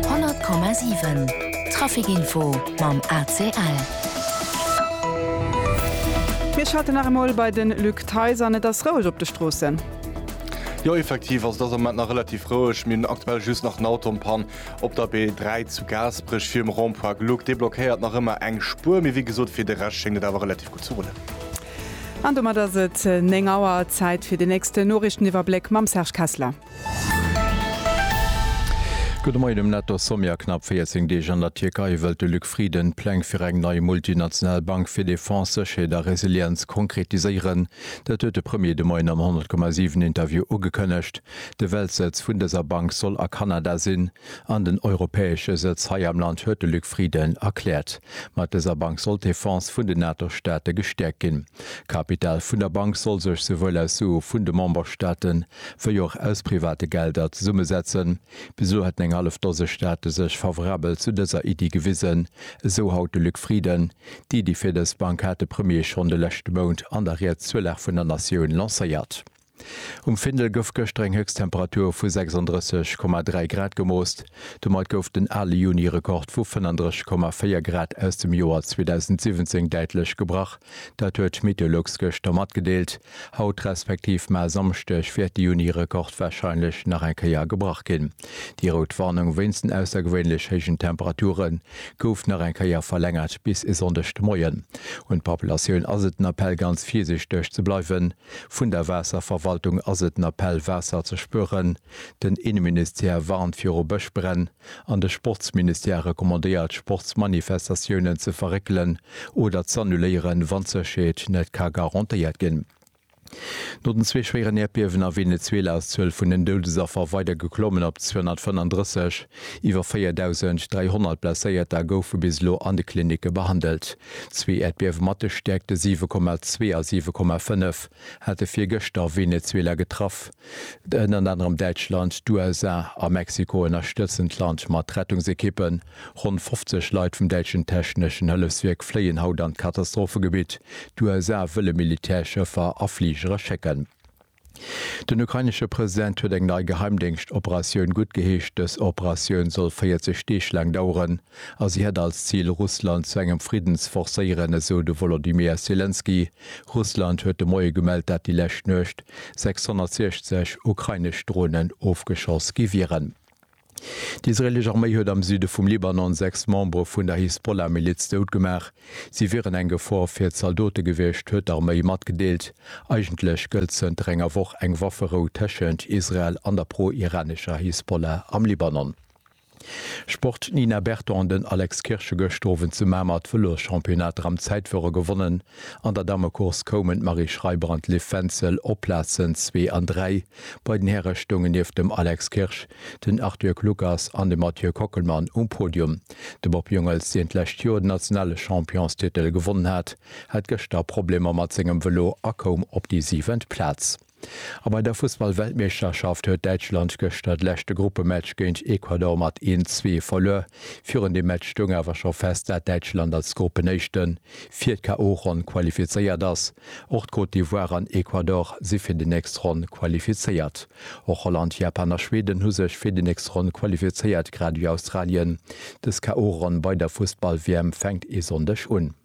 100,7 Trafic Info mam ACL. Mir schalten nach emol bei de Luc Theis an. Et ass roueg op de Stroossen. Jo effektiv ass et ass am Moment nach relativ roueg. Mir hunn aktuell just nach en Auto en Panne op der B3 zu Gaasperech virum Rond-point Gluck. Dee blockéiert nach ëmmer eng Spuer, mee wéi gesot, fir de Rescht schéngt et awer relativ gutt ze rullen. An domat ass et 9 Auer. Zäit fir den nächsten Noriichteniwwerbléck mam Serge Kessler. Gudde Moien um Netto-Sommet. A knapp 14 Deeg an der Tierkei wëllt de Luc Frieden d'Pläng fir eng nei multinational Bank fir Defense, Sécherheet a Resilienz konkretiséieren. Dat huet de Premier de Moien am 100,7 Interview ugekënnegt. De Weltsëtz vun dëser Bank soll a Kanada sinn an den europäesche Sëtz hei am Land, huet de Luc Frieden erkläert. Mat dëser Bank soll d'Defense vun den NATO-Staate gestäerkt ginn. D'Kapital vun der Bank soll sech souwuel aus Sue vun de Memberstaaten wéi och aus private Gelder zesummesetzen. Bis elo hätten eng hallef Dose Staate sech favorabel zu dëser Iddi gewisen, esou haut de Luc Frieden. D'Iddi fir dës Bank hat de Premier schonn de leschte Mount an der Ried zur Lag vun der Natioun lancéiert. Um Findel gouf gëschter eng Héchsttemperatur vu 36,3 Grad gemoost. Domat gouf den ale Juni-Rekord vu 35,4 Grad aus dem Joer 2017 däitlech gebrach. Dat huet Meteolux gëschter matgedeelt. Haut respektiv maer Samschdeg wäert de Juni-Rekord wahrscheinlech nach eng Kéier gebrach ginn. Déi rout Warnung wéinst den aussergewéinlech héijen Temperature gouf nach eng Kéier verlängert bis e Sonndeg de Moien. Un d'Populatioun ass et den Appell ganz virsichteg ze bleiwen. Vun der Waasserverwaltung ass et den Appell Waasser ze spueren. Den Inneministère warnt viru Bëschbränn. an de Sportsministère recommandéiert Sportsmanifestatiounen ze verréckelen oder z'annuléieren, wann d'Sécherheet net ka garantéiert ginn. No den zwee schwéieren Äerdbiewen a Venezuela ass d'Zuel vun den Doudesaffer weider geklommen op 235. Iwwer 4.300 Blesséierter goufe bis elo an de Klinicke behandelt. Zwee Äerdbiewe mat de Stäerkte 7,2 a 7,5 hate virgëschter Venezuela getraff. Ënnert anerem Däitschland, d'USA a Mexiko ënnerstëtzen d'Land mat Rettungsekippen. Ronn 50 Leit vum däitschen techneschen Hëllefswierk fléien haut an d'Katastrophegebitt. D'USA wëlle Militärschëffer a Fligere schécken. Den ukrainesche President huet eng nei Geheimdéngschtoperatioun guttgeheescht. Dës Operatioun soll 40 Deeg laang daueren. A si hätt als Zil, Russland zu engem Fridden ze forcéieren, esou de Wolodymyr Selenskyj. Russland huet de Moie gemellt, dat déi lescht Nuecht 660 ukrainesch Dronen ofgeschoss gi wieren. D'israeelesch Arméi huet am Süde vum Libanon sechs Membere vun der Hisbollah-Miliz dout gemaach. Si wieren eng Gefor fir d'Zaldote gewiescht, huet d'Arméi matgedeelt. Eigentlech gëllt zënter enger Woch eng Wafferou tëschent Israel an der pro-iranescher Hisbollah am Libanon. Sport, D'Nina Berton an den Alex Kirsch hu gëscht Owend zu Mamer d'Vëloschampionnat Ram Zäitfuerer gewonnen. An der Dammecourse koumen d'Marie Schreiber an d'Liv Fentzel op d'Plazen zwee an dräi. Bei den Häre stoungen nieft dem Alex Kirsch den Arthur Kluckers an de Mathieu Kockelmann um Podium. De Bob Jungels, deen d'lescht Joer den nationale Championstitel gewonnen hat, hat gëschter Problemer mat sengem Vëlo a koum op déi siwent Plaz. A bei der Fussballweltmeeschterschaft huet Däitschland gëschter d'leschte Gruppematch géint Ecuador mat een, zwee verluer. Virun deem Match stoung awer scho fest, dat Däitschland als Gruppenéischte fir d'KO-Ronn qualifizéiert ass. Och d'Cote d'Ivoire an Ecuador si fir déi nächst Ronn qualifizéiert. Och Holland, Japan a Schweden hu sech fir déi nächst Ronn qualifizéiert, grad ewéi Australien. Dës KO-Ronn bei der Fussball-WM fänkt ee Sonndeg un.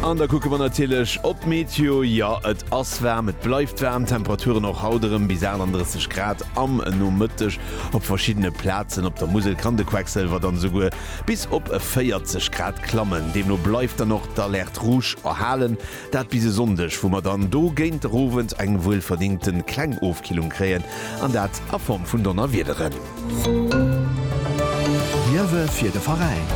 An da kucke mer natierlech op d'Meteo. Jo, et ass waarm, et bleift waarm. D'Temperaturen och haut erëm bis 38 Grad am Nomëtteg. Op verschiddene Plazen op der Musel kann de Quecksilwer dann esouguer bis op 40 Grad klammen. Deemno bleift dann och d'Alerte rouge erhalen. Dat bis e Sonndeg, wou mer dann do géint der Owend eng wuelverdingte kleng Ofkillung kréien, an dat a Form vun Donnerwiederen. Liewe fir de Veräin!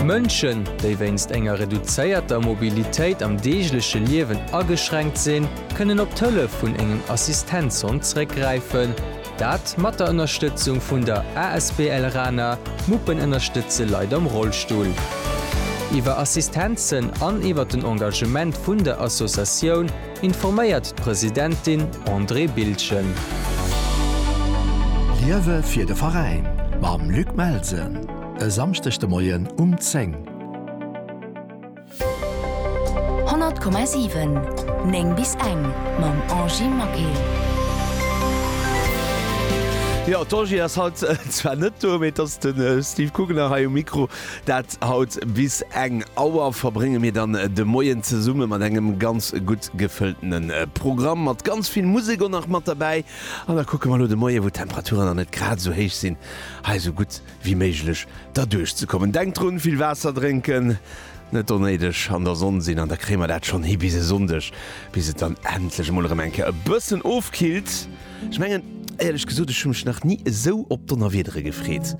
Mënschen, déi wéinst enger reduzéierter Mobilitéit am deegleche Liewen ageschränkt sinn, kënnen op d'Hëllef vun engem Assistenzhond zréckgräifen. Dat mat der Ënnerstëtzung vun der asbl Rana, Muppen ënnerstëtze Leit am Rollstull. Iwwer Assistenzen an iwwer den Engagement vun der Associatioun informéiert d'Presidentin Andrée Bildgen. Liewe fir de Veräin mam Luc Melsen e Samschdeg de Moien um 10. 100,7 9 bis eng mam Angy Maquet. Jo d'Angy ass haut zwar net do, mee et ass de Steve Kugener hei um Mikro. Dat haut bis eng Auer verbrénge mir dann de Moien zesumme mat engem ganz gutt gefëlltene Programm, mat ganz vill Musek och nach mat derbäi. An da kucke mer elo de Moie wou d'Temperaturen dann net grad esou héich sinn, hei esou gutt wéi méiglech derduerch ze kommen. Denkt drun, vill Waasser drénken, net onnéideg an der Sonn sinn an da kréie mer dat schonn hi bis e Sonndeg, bis et dann endlech emol erëm eng Kéier e bëssen ofkillt. Ech mengen, éierlech gesot, ech hu mech nach ni esou op Donnerwiedere gefreet.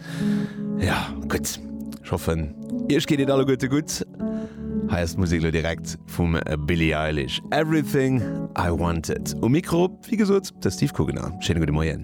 Jo, gutt, ech hoffen, iech geet et alleguerte gutt. Hei ass d'Musek elo direkt vum Billie Eilish, Everything I Wanted. Um Mikro, wéi gesot, de Steve Kugener. Schéine gudde Moien.